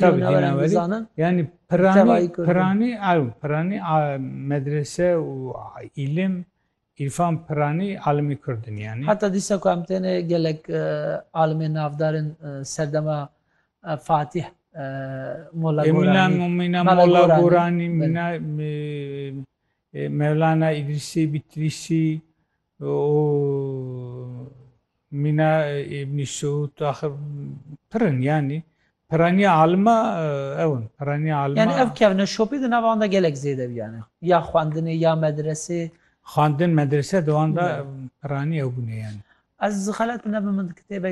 Tabii din evvelî yani piranî piranî ew piranî medrese û îlim îrfan piranî alimî kurd in yani. Heta dîsa ku em têne gelek e, alimê navdar in e, serdema e, Fatih Molla Gorani. Mîna Molla Gorani, mîna Mevlana İdrisi Bitrisi, û mîna Îbnî Sûd axir pir in yanî piraniya alima ew in piraniya alima. Yanî ev kevne şopê di nava wan de gelek zêde bû yanî ya xwendinê ya medresê. Xwendin medrese di wan de piranî ew bûne yanî. Ez xelet nebim min di kitêbe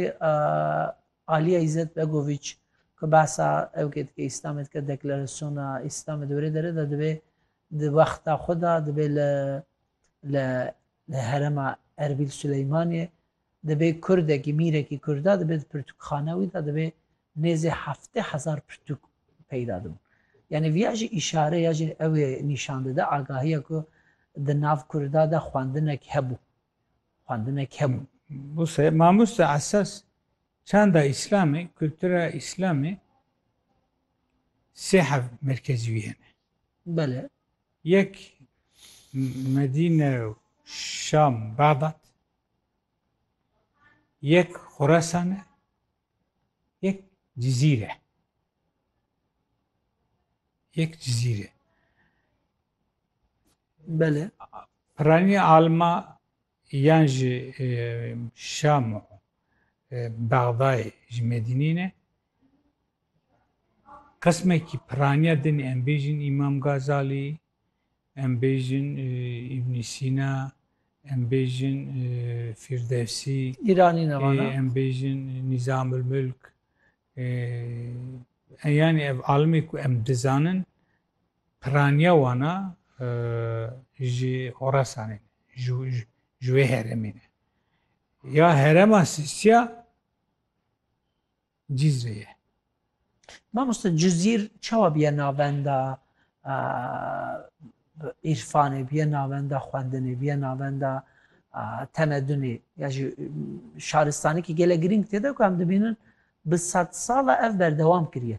Aliya Îzzet Begoviç ku behsa ew kê dike Îslamê dike deklarasyona Îslamê di wêrê derê de dibê di wexta xwe de dibê li Li herêma Erbîl Sileymaniyê divê kurdekî, mîrekî kurda dibe di pirtûkxana wî de divê nêzî heftê hezar pirtûk peyda dibin. Yanî viya jî îşare ya jî ew ê nîşan dide agahiya ku di nav kurda de xwendinek hebû. Xwendinek hebû. Buse, mamoste esas çanda îslamê, kultura îslamê sê hev merkezî wî hene. Bele. Yek Medîne û Şam Bexdad, yek Xurasan e, yek Cizîr e. Yek Cizîr e. Bele. Piranî alma Yan ji Şam û Bexdayê ji Medînî ne. Qismekî piraniya dinê em bêjin Îmam Gazalî, em bêjin Îbnî Sîna, em bêjin Fîrdevsî, Îranî ne vana? em bêjin Nîzamilmilk, yanî ev alimê ku em dizanin Piraniya wan a ji Horasanê ne, ji wê heremê ne. Ya herema Sîsya Cîzrê ye. Mamoste Cizîr çawa bûye navenda îrfanê, bûye navenda xwendinê, bûye navenda temedunê ya jî şaristanekî gelek girîng tê de ku em dibînin bi sedsala ev berdewam kiriye.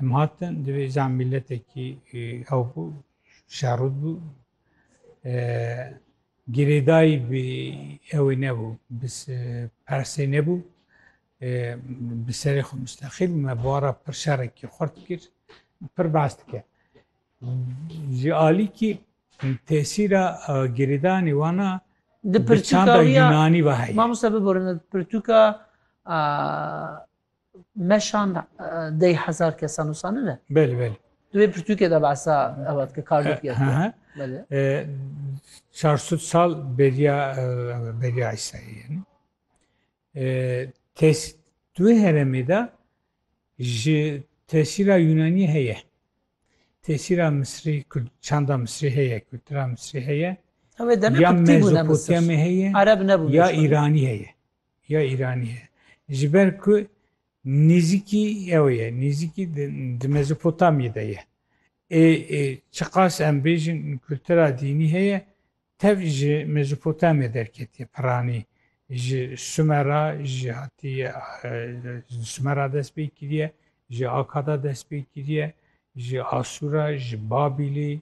Em hatin divê zam mîletekî ew bû şerûd bû girêdayî bi ewê nebû bi persê nebû bi serê xwe mustexîl me bara pir şerekî xurt kir pir behs dike ji alî kî tesîra girêdanê wana di pirçanda Yunanî ve heye. Mamosta biborîne pirtûka Meşan dey hezar kesa nusani ne? Belê belê. Tu vê pirtûkê de behsa ewa dike kar dûk ye. Çarsud sal beriya beriya Îsa'yê yani. Tes tu heremê de ji tesîra Yunanî heye. Tesîra Misrî, çanda Misrî heye, kultura Misrî heye. Ya Mezopotamya heye, ya Îranî heye. ya Îranî ye. Ji ber ku nêzîkî ew ye, nêzîkî di Mezopotamyê de ye. Ê çiqas em bêjin kultura dînî heye, tev ji Mezopotamya derketiye piranî. Ji Sumera jî hatiye, di Sumera dest pê kiriye, ji Akada dest pê kiriye, ji Asûra, ji Babîlê,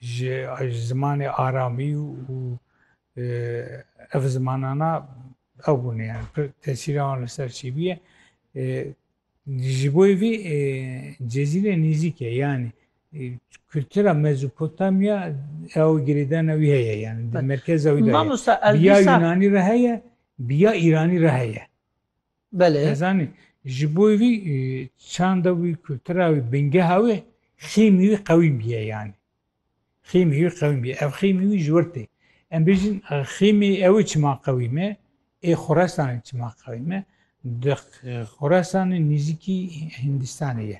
Ji zimanê aramî û ev zimanana ew bûne yani pir tesîra wan li ser çi bûye. Ji bo vî Cezîre nêzîk e yani kultura Mezopotamya ew girêdana wî heye yani di merkeza wî de heye. Biya Yunanî re heye, biya Îranî re heye. Belê. Ez zanî ji bo wî çanda wî, kultura wî, bingeha wî, xîmî wî qewîm bîye yanî. Xîmî wî qewîm bîye. Ev xîmî wî ji wir tê. Em bêjin xîmî ew çima qewîm e, ê Xorasanê çima qewîm e. Di Xorasanê nêzîkî Hîndistanê ye.